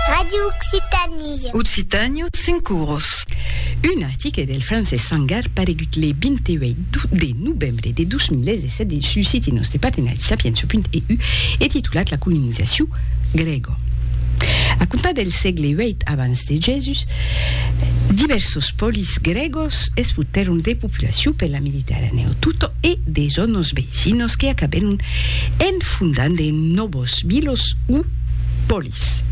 Radio Occitanie. Occitània, cinc oros. Un article del francés Sangar paregut le 28 de novembre de 2017 dins su siti nòste partenari sapientia.eu e titulat La colonizacion grèga. A comptar del sègle viii abans de Jesús, divèrsos polis grègos expultèron de populacion per la Mediterranèo tota e de zònas veïcinas que acabèron en fondant de nòvas. Los Milos o Polis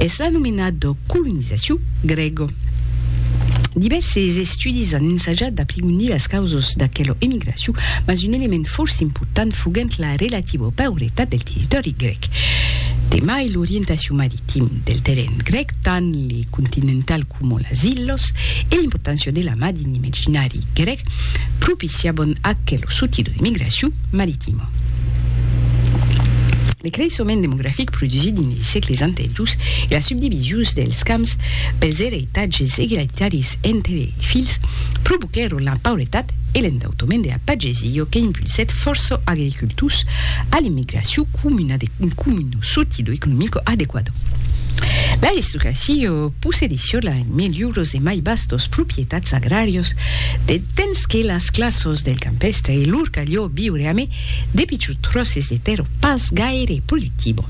es l'anomenat de colonizacion grèga. Divèrses estudis an ensajat d'aprigonir las causas d'aquela emigracion, mas un element fòrça important foguèt la relativa pauretat del territòri grèc. De mai, l'orientacion maritim del terren grèc, tant le continental coma las illas, e l'importància de la mar dins l'imaginari grèc propiciavan aquela sortida d'emigracion maritima. Le creissement demografic produsit dins de sègles anteriors e la subdivisions dels camps pels ereitatges egalitaris entre lei filhs provoquèron la pauretat e l'endautoment de la pagesia que impulsèt fòrça agricultors a l'immigracion comuna de comuna sotilo economico adequado. L'aristocracia possedissionla en melhors e mai vastos proprietats agràrios de Temps que las classos del campèstre e lor calhó viure amé de pichut tròces de tèrra pas gaire productibo,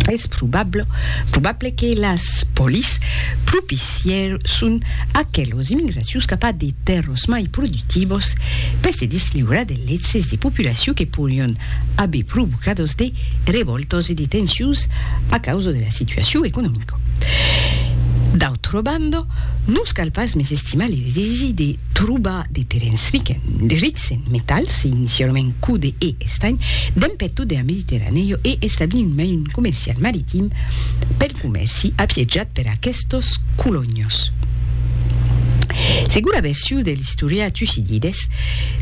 es probable probable que las polis propicièrsson aquelos immigracius cap a de tèrras mai productivos pes de desliurar de l'excès de populacion que porion aver provocados de revòltas e de tensions a causa de la situacion economica. D'autra banda, Nos cal pas mesestimar le desesi de trobar de terensriken, de rics en metals, inicialament code e estanh, dempèt tot dera Mediterranèo e establir un mailhon comercial maritim pel comèrci apiejat per aquestos colonhos. Segura version de l'istorià Tucidides,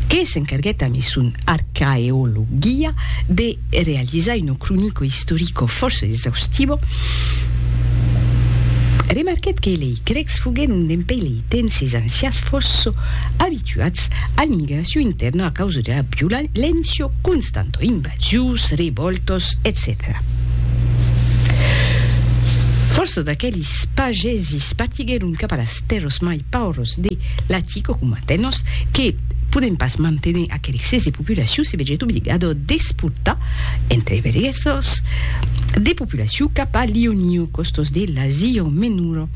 que s'encarguèt amé son Archaeologia de. e realizar un cronico istorico fòrça exaustivo, remarquèt que lei crècs foguèron dempèi lei temps es ancians fòrça abituats a l'immigracion intèrna a causa de la violéncia constanta, invasions, revòltas, etcetèra. Fòrça d'aqueles pagesis partiguèron cap a las tèrras mai pauvras de l'Atica, coma Atenas, que podent pas manténer qu'er excès de populacion se vegèt obligado d'exportar entre berguesos de populacion cap a Ionío, costos de l'Asia Menora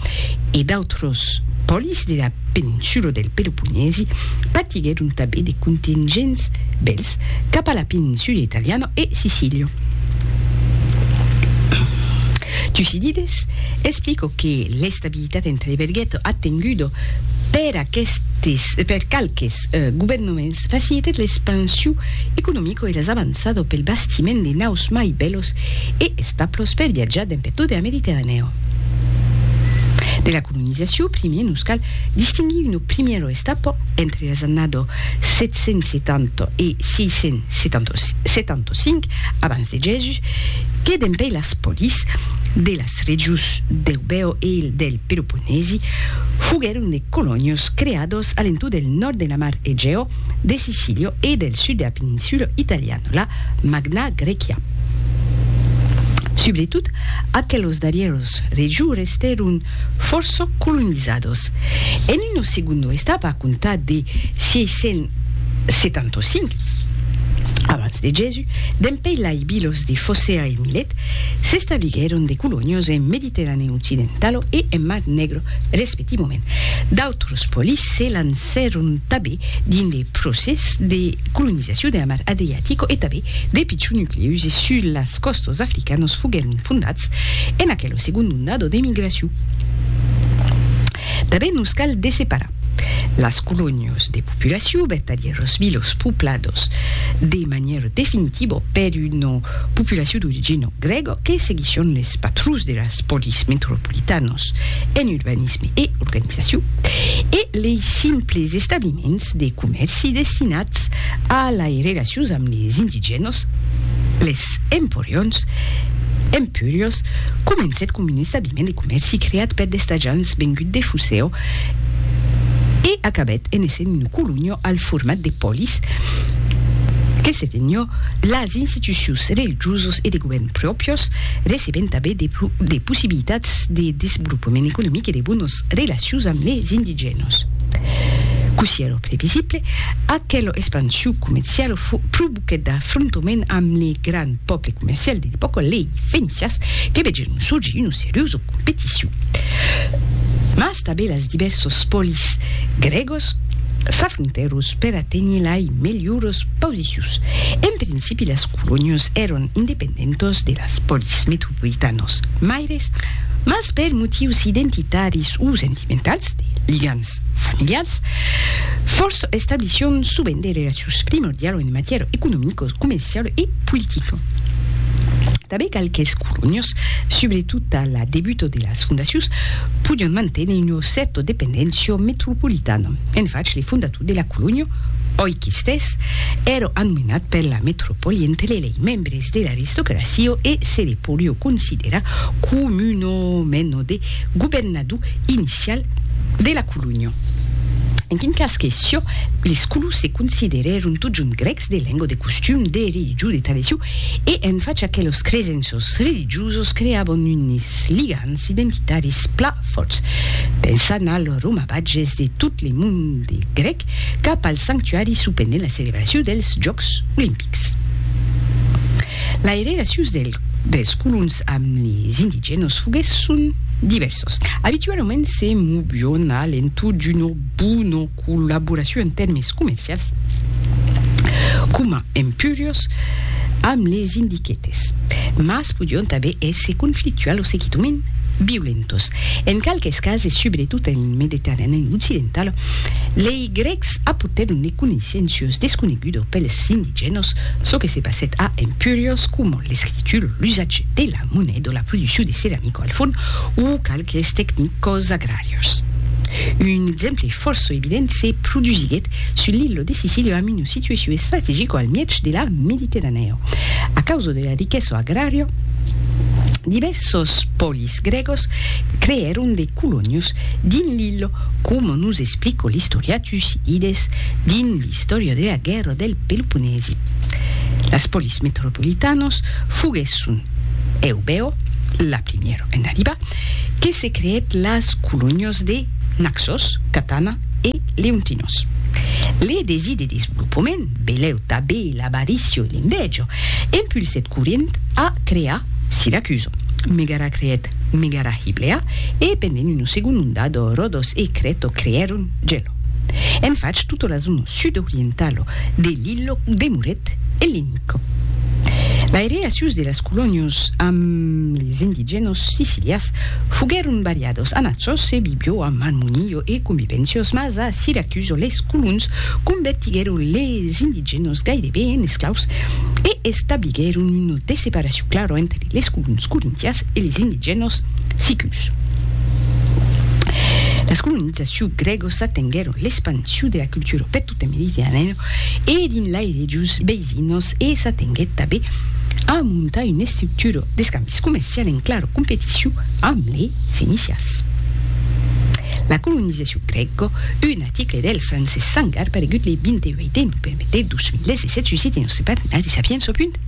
e d'autros pòlis de la peninsula del Peloponèsi patiguèron tanben de contingents bèls cap a la peninsula italiana e Sicília. Tucídides explica que l'estabilitat L'unanimitat entre e verguèt atengudo per aquestes per qualques governaments facilitèt l'expansiu economico e las avançado pel bastiment de naus mai bèlos e establos per viatjar demb e tode a Mediterranèo. De la colonizaciu primier nos cal distinguir uno primiero estapo entre las annado 770 e 675 abans de Jèsus que dempèi las polis de la Las regions d'Eubèo e del Peloponèsi foguèron de colonias creadas a l'entorn del nòrd de la mar Egèo, de Sicília e del sud de la peninsula italiana, la Magna Grècia. Subretot aquelas darrièras regions restèron fòrça colonizadas. En una segunda estapa a comptar de 675 abans de Jèsus, Dempèi lai bilos de Focea e Milet, s'establiguèron de colonios en Mediterranèu occidentalo e en Mar Negro respectivament. D'autros polis se lancèron tabé dins de procès de colonizacion de la Mar Adriatico e tabé de pichons nuclèus e sus las còstas africanos foguèron fondats en aquelo segond ondado d'emigracion. Tanben nos cal desseparar las colonias de populacion, vertadièrs los vilos poplados, de manièra definitiva per una populacion d'origina grèga que seguisson les patrons de las polis metropolitanas en urbanisme e organizacion e lei simples establiments de comèrci destinats a lai relacions amb les indigènas, les emporions, empurios, comencèt com un establiment. Establiment de comèrci creat per d'estajants vengut de Fuseo e acabèt en essent un colonio al format de polis que se tenhó las institucions religiosas e de govèrn pròpios, recebent tanben de possibilitats de desvolopament economic e de bonas relacions amb les indigènas. Cossí èra previsible, aquela expansion comerciala fut pro que d'afrontoment amb le gran pòble comercial de l'epòca, lei fenicians que vegèron sorgir una seriosa competicion, mas tanben las divèrsos polis grègos s'afrontèros per aténher lei melhoras posicions. En principi las colonias èron independentas de las polis metropolitanas maires, mas per motius identitaris o sentimentals, de ligams relacions familialas, fòrça establicion sovent de relacions primordialas en matièra economica, comerciala e politica. Tanben qualques colonias, subretot a la debuta de las fondacions, podián manténer una cèrta dependéncia metropolitana. En fach, le fondator de la colonia, oi qu'estès, èra anomenat per la metropòli entre lei membres de l'aristocracia e se le podiá considerar coma una mena de governador. du inicial de la colonha. En quin cas que sió, les Colous se considerèron totjorn grècs de lenga, de costum, de religion, de tradicion, e en fàcia que los cresenços religiosos creavan unes ligams identitaris plan fòrts, pensant al romavatges de tot le monde grèc cap al sanctuari supendent la celebracion dels Jòcs Olimpics. Lei relacions dels colons amb les indigènos foguèsson divèrsas. Abitualament se movion a l'entorn d'una bona collaboracion en tèrmes comercials, coma empuriós, amb les indigetes, mas podion tanben èsser conflictuals o seguidament violentos. En qualques cases, subretot en Mediterranèu occidental, lei Es grècs apotèron ne coneissencios desconegudos pels indigènos, çò que se passèt a Empúrios, coma l'escritura o l'usatge de la moneda o la produccion de ceramica o al fon, o qualques tecnicos agràrios. Un exemple fòrça evident se produsiguèt sus l'illa de Sicília amb una situacion estrategica al mièg de la Mediterranèa. A causa de la riquesa agrària, divèrsos pòlis, Es grègos creèron de colonios dins l'ilha, coma nos explica l'istorian Tucidides dins l'Istòria de la guèrra del Peloponèsi. Las polis metropolitanas foguèsson Eubèo, la primièra en arribar, que se creèt las colonias de Naxos, Catana e Leontinos. Le desir de desvolopament, belèu tanben L'avaricio e l'inveja impulsèt Corint a crear Siracuso, Megara creèt Megara Hiblea e pendent una segonda ondada Rodos e Creto creèron Gelo. En fach tota la zona sud-orientala de l'illa demorèt ellenica. Lai relacions de las colonias amb les indigènas sicilias foguèron variadas, Anaxos e Bibio amb armonia e convivéncias mas a Siracuso les colons convertiguèron les indigènos gaireben en esclaus e establiguèron una desseparacion clara entre les colons corintians e les indigènos sicus. Las colonizacions grègosas tenguèron l'expansion de la cultura per tota Mediterranèa e dins lai regions veisinas e s'atenguèt tanben a montar una estructura d'escambis comercial en clara competicion amb les fenicians. La colonizacion grèga, una. L'article del francés Sangar paregut le 28 de novembre de 2017 susite nos sepatinaris a piens au punt e